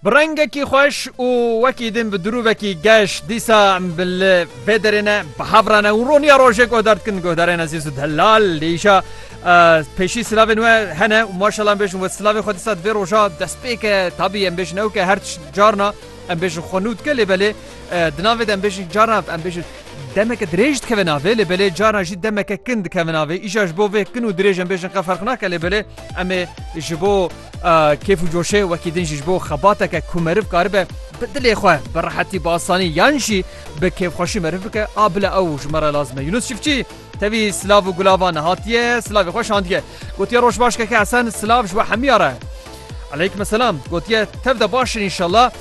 Bi rengekî xweş û wekî din bi dirûvekî geş dîsa em li vê derê ne bi hev re ne û roniya rojê ku der dikin guhdarên ezîz û delal lê îşa pêşî silavên we hene û maşallah em bêjin we silavê xwe dîsa divê roja dest pê ke tabî em bêjin ew ke her carna em bêjin xwe nû dike lê belê di navê de em bêjin carna em bêjin Demeke dirêj dikeve navê lê belê caran jî demeke kin dikeve navê. Îşa ji bo vê kin û dirêj em bêjin qe ferq nake lê belê em ê ji bo kêf û coşê wekî din jî ji bo xebateke ku meriv karibe bi dilê xwe bi rehetî bi asanî yan jî bi kêfxweşî meriv bike a bila ew ji me re lazim e. Yunus Çiftçî tevî silav û gulavan hatiye silavê xwe şandiye. Gotiye roj baş keke Hesen silav ji we hemiya re. Eleykum selam gotiye tev de baş in înşallah.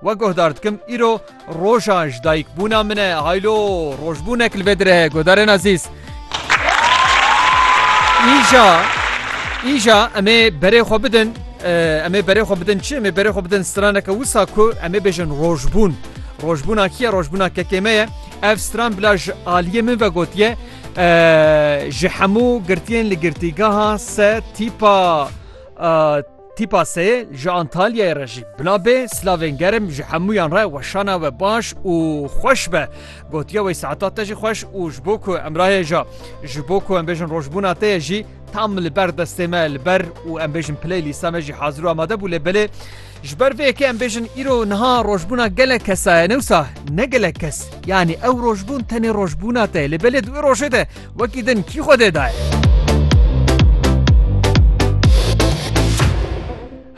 Wek guhdar dikim îro roja ji dayik bûna min e haylo rojbûnek li vê dire heye guhdarên ezîz. Îja îja em ê berê xwe bidin em ê berê xwe bidin çi em ê berê xwe bidin straneke wisa ku em ê bêjin rojbûn. Rojbûna kiye rojbûna kekê me ye ev stran bila ji aliyê min ve gotiye ji hemû girtiyên li girtîgeha se tîpa Tîpa seyê ji Antalyayê re jî bila bê silavên germ ji hemûyan re weşana we baş û xweş be. Gotiya wê saeta te jî xweş û ji bo ku em rahêja ji bo ku em bêjin rojbûna te ye jî tam li ber destê me li ber û em bêjin piley lîsa me jî hazir û amade bû lê belê ji ber vê yekê em bêjin îro niha rojbûna gelek kesaye newsa ne gelek kes yanî ew rojbûn tenê rojbûna te lê belê di wê rojê de Wekî din kî xwedê daye?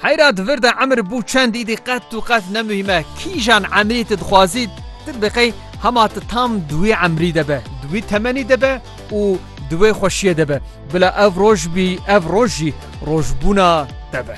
Heyra di vir de emir bû çend îdî qet û qet ne muhîme kîjan emrî tu dixwazî tu bi qey hema tu tam di wî emrî de be di wî temenî de be û di wê xweşiyê de be bila ev roj bî ev roj jî rojbûna te be.